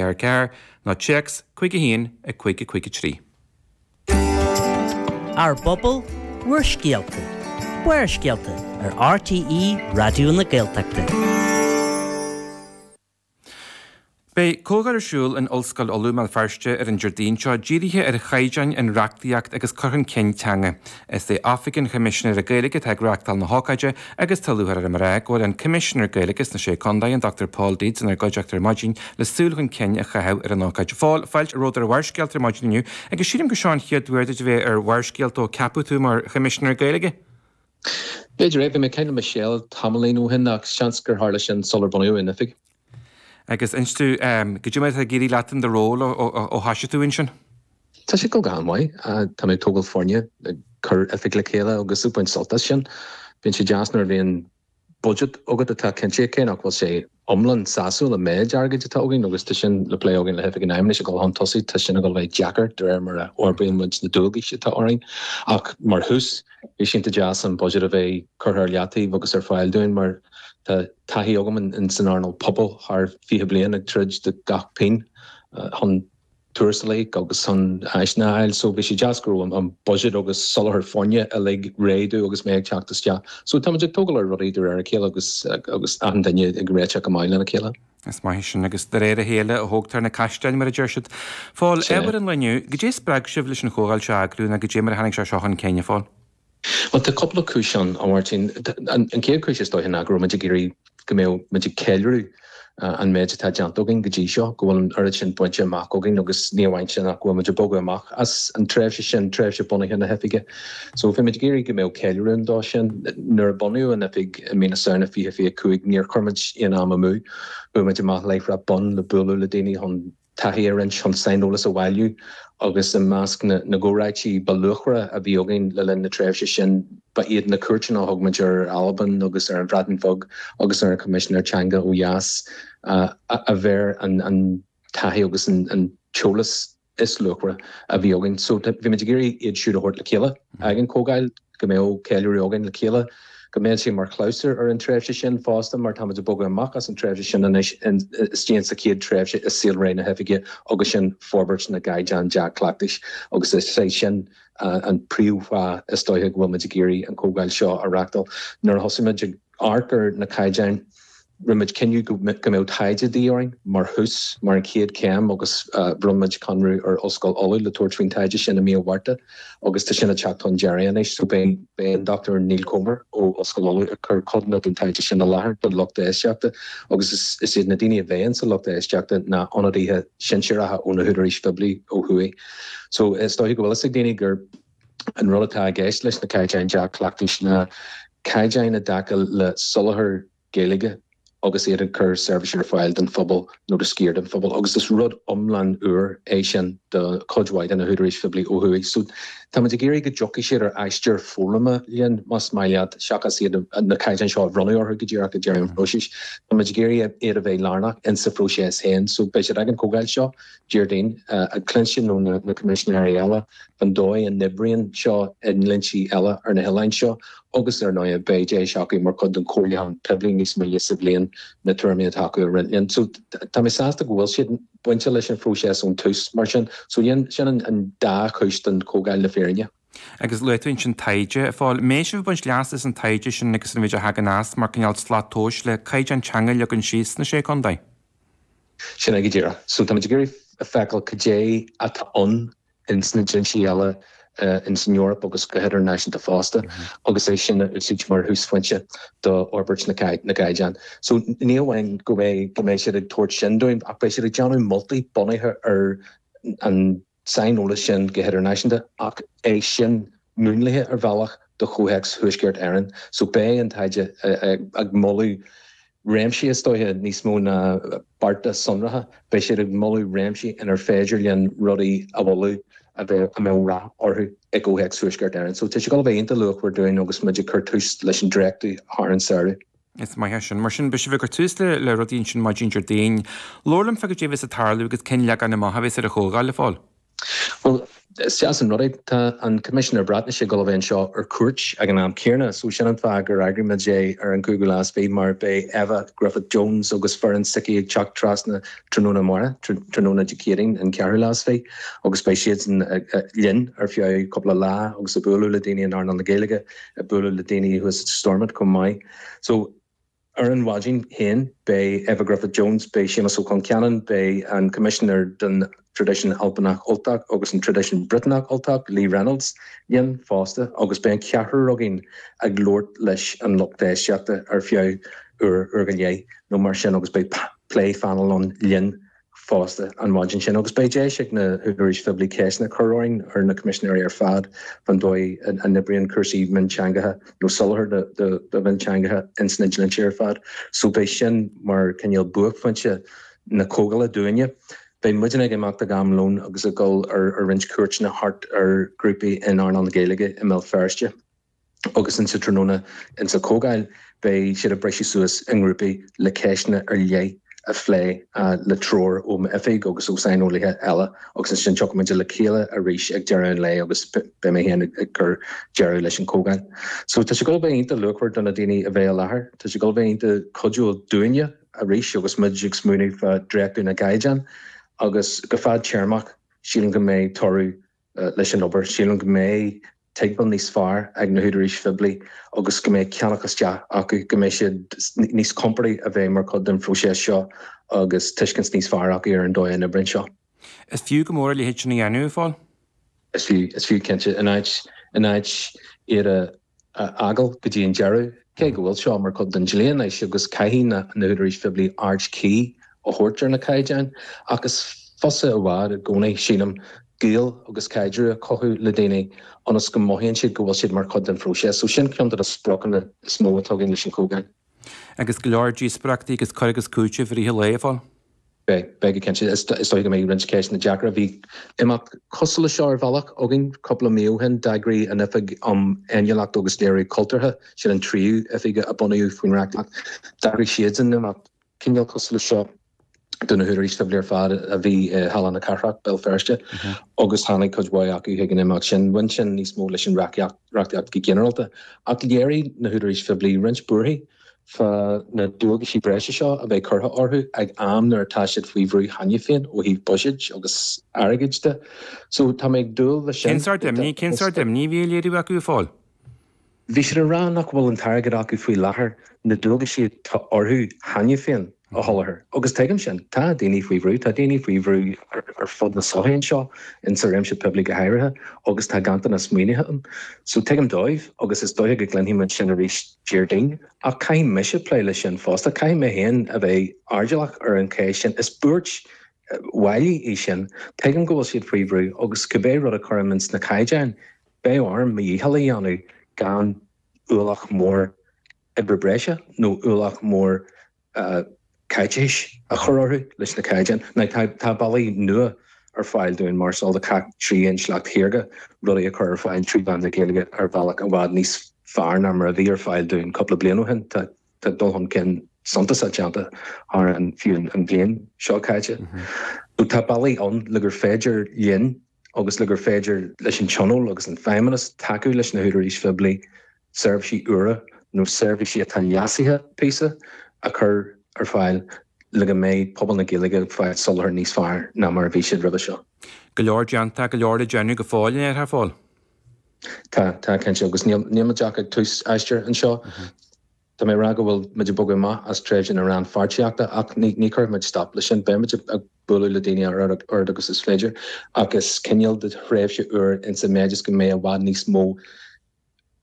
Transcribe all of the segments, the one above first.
ar a 4 nó téacs 51 5 5 3. Ár bPobal, bhur scéalta. Barrscéalta ar RTÉ Raidió na Gaeltachta. Beidh comhdháil ar siúl in Ollscoil Uladh i mBéal Feirste ar an Déardaoin seo dírithe ar chaighdeáin in reachtaíocht agus cur chun cinn teanga. Is é Oifig an Choimisinéara Gaeilge atá ag reáchtáil na hócáide agus tá lúcháir orm a rá go bhfuil an Coimisinéir Gaeilge sna Sé Contae, an Dr Pól Deeds, inár gcuideachta ar maidin le súil chun cinn a chaitheamh ar an ócáid. A Phóil, Fáilte romhat ar Bharrscéalta ar maidin inniu agus sílim gur seo an chéad uair duit a bheith ar Bharrscéalta ó ceapadh tú mar Choimisinéir Gaeilge? B'fhéidir é, bhí mé ag caint le Michelle tamaillín beag ó shin ach seans gur tharla sin sular bunaíodh an oifig. Agus inis domh goidé mar atá ag éirí leat in do ról ó thosaigh tú ansin? Tá sé go han-mhaith. Tá mé ag tógáil foirne, ag cur oifig le chéile agus ag baint sult as sin. Bíonn sé deas nuair a bhíonn budget agat atá cinnte cé nach bhfuil sé iomlán sásúil an méid airgid atá againn agus tá sin le plé againn le hOifig an Fheidhmeannais ag dul chun tosaigh. Tá sin ag dul a bheith deacair de réir mar a fhorbraíonn muid na dualgais atá orainn ach mar thús bhí sé iontach deas an budget a bheith curtha ar leataobh agus ar fáil dúinn mar tá taithí agam in san earnáil pobail thar 20 bliain ag troid do gach pingin chun tuarastail agus chun áiseanna a fháil so bhí sé deas go raibh an budget agus soláthar foirne uilig réidh agus mé ag teacht isteach so táimid ag tógáil ar rudaí de réir a chéile agus agus achan duine ag réiteach go maith lena chéile. Is maith sin agus de réir a chéile a thógtar na caisleáin mar a deir siad. A Phóil, ábhar an lae inniu, goidé a spreag sibh leis an chomhdháil seo a eagrú ná goidé mar a tháinig sé seo chun cinn, a Phóil? Bhuel, tá cúpla cúis ann, a Mháirtín. An chéad chúis is dóiche ná go raibh muid ag iarraidh go mbeadh muid ag ceiliúradh an méid atá déanta againn go dtí seo, go bhfuil an oiread sin bainte amach againn agus ní amháin sin ach go bhfuil muid ag bogadh amach as an tréimhse sin, tréimhse bunaithe na hoifige. So, bhí muid ag iarraidh go mbeadh ceiliúradh ann dó sin. Nuair a bunaíodh an oifig i mí na Samhna 2025 níor chuir muid aon am amú, chuaigh muid amach láithreach bonn le bualadh le daoine chun. taithí a roinnt chun saineolas a bhailiú agus i measc na gcomhráití ba luachmhaire a bhí againn le linn na tréimhse sin ba iad na cuairteanna a thug muid ar Albain agus ar an Bhreatain Bheag agus ar an Choimisinéir Teanga ó dheas ab é an taithí agus an t-eolas is luachmhaire a bhí againn so bhí muid ag iarraidh iad siúd a thabhairt le chéile ag an gcomhdháil. go mbeadh ceiliúradh againn le chéile, go mbeadh sé mar chlabhsúr ar an tréimhse sin fosta mar táimid ag bogadh amach as an tréimhse sin anois isteach sa chéad tréimhse i saolré na hOifige agus sin forbairt na gcaighdeán dea-chleachtais agus is é sin an príomhfáth is dóiche go bhfuilmid ag iarraidh an chomhdháil seo a reachtáil. Nuair a thosaímid ag. amharc ar na caighdeáin, rinne muid cinneadh go mbeadh taighde de dhíth orainn mar thús, mar an chéad chéim agus bhronn muid conradh ar Ollscoil Uladh le tabhairt faoin taighde sin i mí an Mhárta agus tá sin ag teacht chun deiridh anois so beidh an Dr Neil Comer ó Ollscoil Uladh ag cur codanna den taighde sin i láthair don lucht éisteachta agus is iad na daoine a bheas insa lucht éisteachta ná ionadaithe sinsearacha ó na húdaráis phoiblí ó thuaidh so is dóiche go bhfuil fhios ag daoine gur An rud atá i gceist leis na Caighdeáin Dea-Chleachtais ná caighdeáin i dtaca le soláthar Gaeilge agus iad ag cur seirbhíse ar fáil don phobal nó do sciar den phobal agus is rud iomlán úr é sin do chuid mhaith de na húdaráis phoiblí ó thuaidh. So táimid ag iarraidh go dtiocfaidh siad ar aistear foghlama linn, más maith leat, seachas iad na caighdeáin seo a bhrú orthu go díreach ag deireadh an phróisis. Táimid ag iarraidh iad a bheith lárnach insa phróiseas féin. So beidh siad ag an gcomhdháil seo. Déardaoin, ag cluinstin ó na Coimisinéirí eile an dóigh a n-oibríonn seo i ndlínsí eile ar na hoileáin seo agus, ar ndóigh, beidh deis acu mar chuid den chomhairliúchán poiblí níos moille sa bhliain na tuairimí atá acu a roinnt linn. So tá mé sásta go bhfuil siad bainte leis an phróiseas ón tús, mar sin. So sin an dá chúis don chomhdháil le fírinne. Agus luaigh tú ansin taighde, a Phóil. Beidh sibh ag baint leas as an taighde sin agus an méid a thagann as mar cineál slat tomhais le caighdeán teanga a leagan síos sna Sé Chontae? Sin é go díreach. So táimid ag iarraidh a fheiceáil cad é atá ann in sna dlínsí eile in san Eoraip agus go hidirnáisiúnta fosta agus é sin a úsáid mar thúsphointe do fhorbairt na gcaighdeán. So ní hamháin go mbeidh go mbeidh siad ag tabhairt sin dúinn ach beidh siad ag déanamh moltaí bunaithe ar an saineolas sin go hidirnáisiúnta ach é sin múnlaithe ar bhealach do chomhthéacs Thuaisceart Éireann. So beidh an taighde ag moladh réimsí is dóiche níos mó ná bearta sonracha, beidh siad ag moladh réimsí inar féidir linn rudaí a mholadh a bheadh, a mbeadh rath orthu i gcomhthéacs Thuaisceart Éireann. So tá sé ag dul a bheith iontach luachmhar dúinn agus muid ag cur tús leis an dréachtú thar an samhradh. Is maith sin. Mar sin, beidh sibh ag cur tús le rudaí ansin maidin Déardaoin. Labhair liom fá cad é a bheas ag tarlú agus cén leagan amach a bheas ar an chomhdháil, a Phóil. Bhuel, is deas an rud é. Tá an Coimisinéir Breatnaise ag dul a bheith anseo ar cuairt ag an am céanna so sin an fáth gur eagraigh muid é ar an 5ú lá is fiche mar beidh Efa Gruffudd Jones agus foireann s'aici ag teacht trasna tráthnóna amárach, tráthnóna Dé Céadaoin an 4ú lá is fiche agus beidh siadsan linn ar feadh cúpla lá agus ag bualadh le daoine in earnáil na Gaeilge. ag bualadh le daoine thuas i Stormont chomh maith. So, ar an mhaidin féin, beidh Efa Gruffudd Jones, beidh Séamas Ó Concheanainn, beidh an Coimisinéir don Traidisiún Albanach Ultach agus an Traidisiún Briotanach Ultach, Lee Reynolds, linn fosta agus beidh an ceathrar againn ag labhairt leis an lucht éisteachta ar feadh uair, uair go leith nó mar sin agus beidh plé painéil ann linn. fosta an mhaidin sin agus beidh deis ag na húdaráis phoiblí ceisteanna a chur orainn, ar na Coimisinéirí ar fad, faoin dóigh a n-oibríonn cúrsaí mionteangacha nó soláthar do mhionteangacha ins na dlínsí ar fad. So beidh sin mar cineál buaicphointe na comhdhála dúinne. Beidh muidinne ag imeacht ag am lón agus ag dul ar roinnt cuairteanna thart ar ghrúpaí in earnáil na Gaeilge i mBéal Feirste. agus insa tráthnóna insa Chomhdháil beidh siad ag briseadh suas i ngrúpaí le ceisteanna ar leith a phlé le treoir ó m'Oifig agus ó shaineolaithe eile agus ansin tiocfaimid le chéile arís ag deireadh an lae agus beidh mé féin ag cur deireadh leis an Chomhdháil. So tá sé ag dul a bheith iontach luachmhar do na daoine a bheidh i láthair, tá sé ag dul a bheith iontach cuidiúil dúinne arís agus muid ag smaoineamh fá dhréachtú na gcaighdeán agus go fad téarmach sílim go mbeidh toradh leis an obair. Sílim go mbeidh tuigbheáil níos fearr ag na húdaráis phoiblí agus go mbeidh ceannach isteach acu, go mbeidh siad níos compordaí a bheith mar chuid den phróiseas seo agus tuiscint níos fearr acu ar an dóigh a n-oibríonn seo. Is fiú go mór a leithéid sin a dhéanamh, a Phóil. Is fiú, is fiú, cinnte. In áit, in áit iad a. a fhágáil go dtí an deireadh, cé go bhfuil seo mar chuid den dlí anois agus caithfidh na húdaráis phoiblí aird chuí a thabhairt ar na caighdeáin. Ach is fusa i bhfad i gcónaí, sílim, gaol agus caidreamh a chothú le daoine ionas go mothaíonn siad go bhfuil siad mar chuid den phróiseas, so sin ceann de na spriocanna is mó atá againn leis an Chomhdháil. agus go leor díospoireachtaí agus cur agus cúiteamh i rith an lae ar fáil. Beidh, beidh go cinnte. Is dóiche go mbeidh roinnt ceisteanna deacra. Bhí imeacht cosúil leis seo ar bhealach againn cúpla mí ó shin. D'eagraigh an Oifig um Fhéiniúlacht agus Léiriú Cultúrtha, sin an tríú oifig a bunaíodh faoin reachtaíocht, d'eagraigh siadsan imeacht cineál cosúil leis seo. Do na húdaráis phoiblí ar fad a bhí i Halla na Cathrach, Béal Feirste, agus tháinig cuid mhaith acu chuig an imeacht sin. Bhain sin níos mó leis an reachtaíocht go ginearálta, ach léirigh na húdaráis phoiblí roinnt buarthaí fá na dualgaisí breise seo a bheith curtha orthu ag am nuair atá siad faoi bhrú cheana féin ó thaobh buiséid agus airgid de. So, tá mé ag dúil leis sin. Cén sort imní, cén sort imní a bhí á léiriú acu, a Phóil? Bhí siad ag rá nach bhfuil an t-airgead acu faoi láthair na dualgaisí atá orthu cheana féin a sholáthar agus tuigim sin. Tá daoine faoi bhrú, tá daoine faoi bhrú ar fud na sochaí anseo, in sa réimse poiblí go háirithe agus tá ganntanas maoinithe ann. So tuigim dóibh agus is dóiche go gcluinfidh muid sin arís Déardaoin ach caithfidh mise plé leis sin fosta, caithfidh mé féin a bheith airdeallach ar an cheist sin. Is buairt bhailí í sin. Tuigim go bhfuil siad faoi bhrú agus cibé rud a chuirim in sna caighdeáin, Beidh orm mo dhícheall a dhéanamh gan ualach mór oibre breise nó ualach mór caiteachais a chur orthu leis na caighdeáin. Tá bealaí nua ar fáil dúinn mar shampla tríd an intleacht shaorga rudaí a chur ar fáil trí mheán na Gaeilge ar bhealach i bhfad níos fearr ná mar a bhí ar fáil dúinn cúpla bliain ó shin. Tá dul chun cinn suntasach déanta thar fiú an bhliain seo caite. Tá bealaí ann le gur féidir linn agus le gur féidir leis an Tionól agus an Feidhmeannas tacú leis na húdaráis phoiblí seirbhísí úra, nó seirbhísí atá leasaithe píosa, a chur ar fáil le go mbeidh pobal na Gaeilge ag fáil soláthar níos fearr ná mar a bhí siad roimhe seo. Go leor déanta, go leor le déanamh go fóill, déarfá, Phól? Tá, tá, cinnte, agus níl muid ach ag tús aistear anseo. Tá mé ag rá go bhfuil muid ag bogadh amach as tréimhse na rannpháirtíochta ach ní chuirfidh muid stop leis sin. Beimid ag bualadh le daoine a oiread agus is féidir ach is cineál de thréimhse úr insa méid is go mbeidh i bhfad níos mó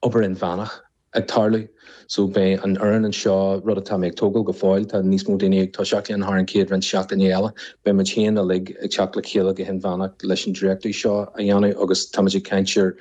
obair inmheánach ag tarlú. So beidh an fhoireann anseo, rud atá mé ag tógáil go fóill, tá níos mó daoine ag toiseacht linn thar an chéad roinnt seachtainí eile, beidh muidinne uilig ag teacht le chéile go hinmheánach leis an dréachtú seo a dhéanamh agus táimid ag caint ar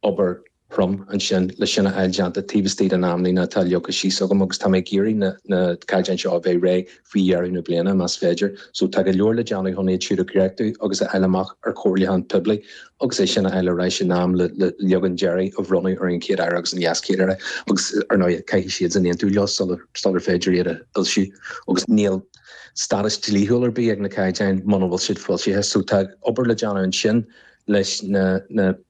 obair chrua ansin le sin a fháil déanta taobh istigh den amlíne atá leagtha síos agam agus tá mé ag iarraidh na caighdeáin seo a bheith réidh faoi dheireadh na bliana más féidir. So tá go leor le déanamh chun iad seo a dhréachtú agus a fháil amach ar chomhairliúchán poiblí agus é sin a fháil ar ais in am le leagan deiridh a bhronnadh ar an gCéad-Aire agus an LeasChéad-Aire agus ar ndóigh caithfidh siadsan aontú leo sular féidir iad a fhoilsiú agus níl stádas dlíthiúil ar bith ag na caighdeáin muna bhfuil siad foilsithe. So tá obair le déanamh ansin. leis na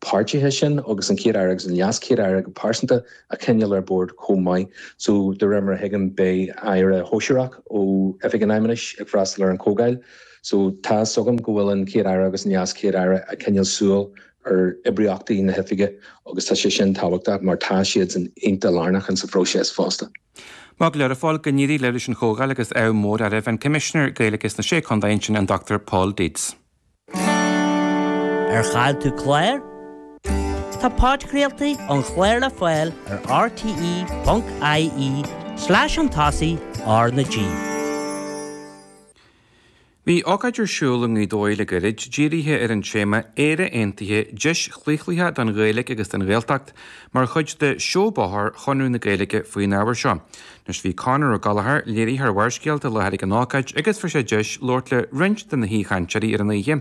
páirtithe sin agus an Chéad Aire agus an LeasChéad Aire go pearsanta a choinneáil ar bord chomh maith. So de réir mar a thuigim, beidh Aire Sóisearach ó Oifig an Fheidhmeannais ag freastal ar an chomhdháil. Tá a fhios agam go bhfuil an Chéad Aire agus an LeasChéad Aire ag coinneáil súil ar oibríochtaí na hOifige agus tá sé sin tábhachtach mar tá siadsan iontach lárnach insa phróiseas fosta. Maith go leor, a Phóil, go n-éirí libh leis an chomhdháil agus ádh mór oraibh. An Coimisinéir Gaeilge sna Sé Chontae ansin, an Dr Pól Deeds. Ar chaill tú clár? Tá podchraoltaí an chláir le fáil ar rte.ie slash podchraoltaí R na G. Bhí ócáid ar siúl i nGaoth Dobhair le gairid, dírithe ar an téama 'Éire Aontaithe, Deis chlaochlaithe don Ghaeilge agus don Ghaeltacht' mar chuid de Sheó Bóthair Chonradh na Gaeilge faoin ábhar seo. Anois bhí Conor Ó Gallchóir léiritheoir Bharrscéalta i láthair ag an ócáid agus fuair sé deis labhairt le roinnt de na haoichainteoirí ar an oíche.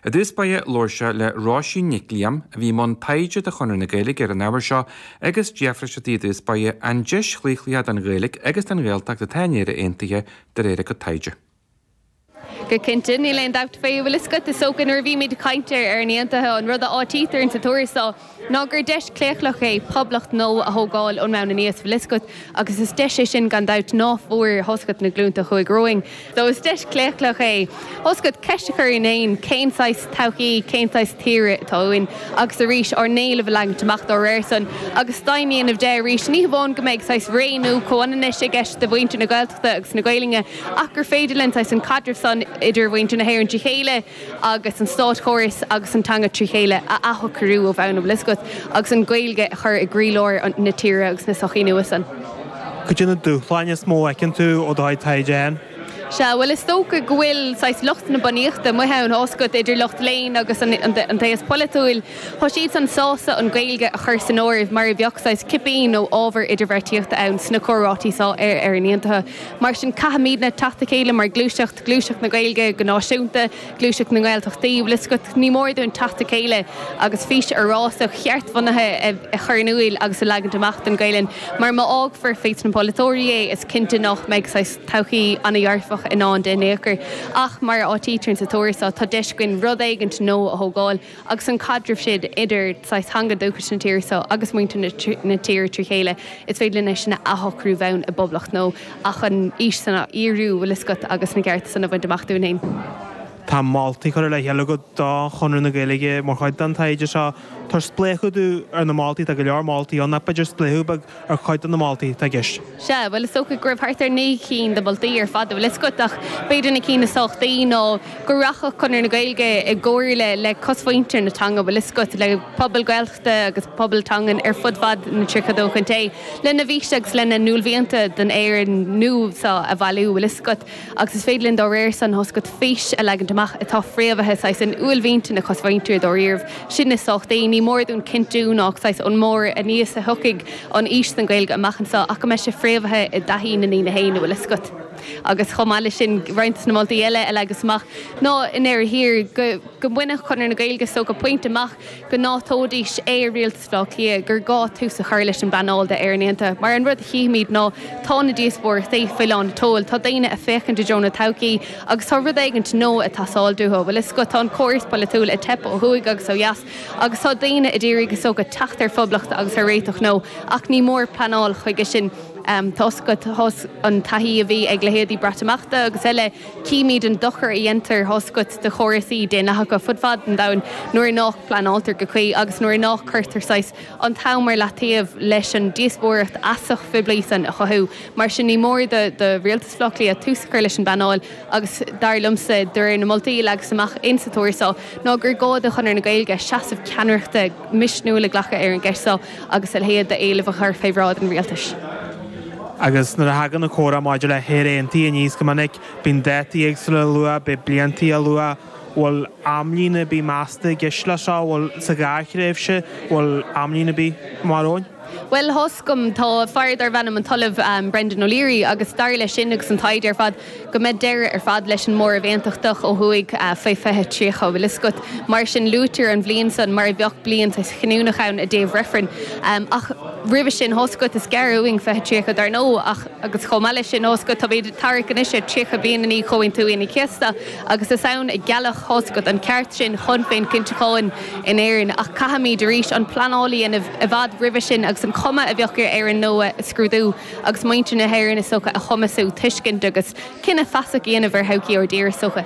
I dtús báire labhair sé le Róisín Nic Liam, a bhí i mbun taighde do Chonradh na Gaeilge ar an ábhar seo agus d'fhiafraigh sé di i dtús báire an deis chlaochlaithe don Ghaeilge agus don Ghaeltacht atá in Éire Aontaithe de réir a cuid taighde. Go cinnte, níl aon dabht fé, bhfuil fhios agat, is dócha nuair a bhímid ag caint ar Éirinn aontaithe. An rud a áitítear ins an tuarascáil so ná gur deis claochlach é poblacht nua a thógáil ón mbonn aníos. Bhfuil fhios agat, agus is deis é sin gan dabht, ná fuair, fhios agat, na glúnta a chuaigh romhainn. So is deis claochlach é, fhios agat, ceist a chur orainn féin cén saghas todhchaí, cén saghas tíre atá uainn agus arís ár n-éileamh a leagaint amach dá réir san. Agus deimhin a dhéanamh de arís ní hamháin go mbeidh saghas ré nua comhionannais i gceist do mhuintir na Gaeltachta agus na Gaelainne, ach gur féidir linn saghas an caidreamh san idir mhuintir na hÉireann trí chéile agus an státchóras agus an teanga trí chéile a athshocrú ó bhonn, bhfuil fhios agat, agus an Ghaeilge a chur i gcroílár na tíre agus na sochaí nua san. Cuid de na dúshláin is mó a fheiceann tú ó thaobh an taighde ann? Sea, bhuel, is dócha go bhfuil saghas lucht na bunaíochta amuigh ann, fhios agat, idir lucht léinn agus an t-aos polaitiúil, tá siad san sásta an Ghaeilge a chur san áireamh mar a bheadh saghas cipín nó ábhar idirbheartaíochta ann sna comhráití san ar Éirinn Aontaithe. Mar sin, caithfimidne teacht le chéile mar ghluaiseacht, gluaiseacht na Gaeilge go náisiúnta, gluaiseacht na nGaeltachtaí, bhfuil 'fhios agat. Ní mór dúinn teacht le chéile agus fís fhorásach, cheartbhunaithe a chur in iúl agus a leagaint amach don Ghaelainn, mar má fhágfar fés na polaiteoirí é, is cinnte nách mbeidh saghas todhchaí ana-dhearfach i ndán di in ao'chor. Ach, mar a áitítear insa tuarascáil, tá deis againn rud éigint nua a thógáil. agus an caidreamh sin idir saghas teanga dúchais na tíre seo agus muintir na tíre trí chéile, is féidir linn é sin a athshocrú ó bhonn i bpoblacht nua ach an fhís san a fhíorú, bhfuil fhios agat, agus na cearta san a bhaint amach dúinn féin. Tá moltaí curtha le chéile agat do Chonradh na Gaeilge mar chuid den taighde seo. Tabhair spléachadh dúinn ar na moltaí, tá go leor moltaí ann ach b'fhéidir spléachadh beag ar chuid de na moltaí atá i gceist. Sea, bhuel, is dócha go raibh thart ar naoi gcinn de mholtaí ar fad, bhfuil fhios agat, ach b'fhéidir na cinn is tábhachtaí ná go rachadh Conradh na Gaeilge i gcomhairle le cosmhuintir na teanga, bhfuil fhios agat, le pobail Gaeltachta agus pobail teangan ar fud fad na 32 chontae, lena bhfís agus lena n-uaillmhianta don Éirinn nua seo a bhailiú, bhfuil fhios agat. agus is féidir linn dá réir san, fhios agat, fís a leagaint amach atá fréamhaithe saghas in uaillmhianta na cosmhuintire dáiríribh. Sin is tábhachtaí. Ní mór dúinn cinntiú nách saghas ón mbárr anuas a thiocfaidh an fhís san don Ghaeilge amach anseo ach go mbeidh sé fréamhaithe i dtaithí na ndaoine féin, bhfuil fhios agat, agus chomh maith le sin roinnt de na moltaí eile a leagas amach ná an iarraidh seo go mbainfeadh Conradh na Gaeilge so go pointe amach go n-áiteoidís ar rialtas Átha Cliath gur gá tús a chur leis an bpleanáil d'Éirinn Aontaithe mar an rud a chífimid ná tá na díospóireachtaí faoi lánseoil, tá daoine a' féachaint i dtreo na todhchaí agus tá rud éigint nua a' teastáil uathu, bhfuil fhios agat, tá an córas polaitiúil a' teip ó thuaidh agus ó dheas agus tá daoine ag iarraidh, is dócha, teacht ar phoblacht agus ar réiteach nua ach ní mór pleanáil chuige sin. Tá fhios agat, tar éis an taithí a bhí ag leithéidí Breatimeachta agus eile, Címid an dochar a dhéantar tá a fhios agat do chórasaí daonlathacha fud fad an domhain nuair nach bpleanáiltear go cuí agus nuair nach gcuirtear saghas an t-am ar leataobh leis an díospóireacht fheasach phoiblí san a chothú. Mar sin ní mór do rialtas Bhaile Átha Cliath tús a chur leis an bpleanáil agus dar liomsa, de réir na moltaí a leagas amach in sa tuairisc so, ná gur gá do Chonradh na Gaeilge seasamh ceannaireachta misniúil a ghlacadh ar an gceist so. agus a leithéid d'éilimh a chur fé bhráid an Rialtais. Agus nuair a thagann an comhrá maidir le hÉire aontaithe aníos go minic, bíonn dátaí éagsúla luaite, bíonn blianta luaite, bhfuil amlíne ar bith measta i gceist leis seo, bhfuil, sa ghearrthréimhse, bhfuil amlíne ar bith mar a bheadh ann? Bhuel, tá a fhios agam, tá fear darbh ainm an tOllamh Brendan O'Leary agus dar leis sin agus an taighde ar fad, go mbeidh deireadh ar fad leis an móramh aontachtach ó thuaidh faoi 2030. Bhuel, tá a fhios agat, mar sin, luaitear an bhliain san mar a bheadh blianta chinniúnach ann i dtaobh reifrinn, ach roimhe sin, tá a fhios agat, is gearr uainn 2030, dar ndóigh, ach, agus chomh maith leis sin, tá a fhios agat, táimid ag tarrac anois ar 30 bliain i ndiaidh Chomhaontú Aoine an Chéasta agus is ann a gealladh, tá a fhios agat, an ceart sin chun féinchinntiúcháin in Éirinn ach caithfimid, arís, an pleanáil a dhéanamh i bhfad roimhe sin agus an chuma a bheadh ar Éirinn nua a scrúdú. agus muintir na hÉireann is dócha, a chumasú, tuiscint agus cinneadh feasach a dhéanamh ar thodhchaí ár dtíre is dócha.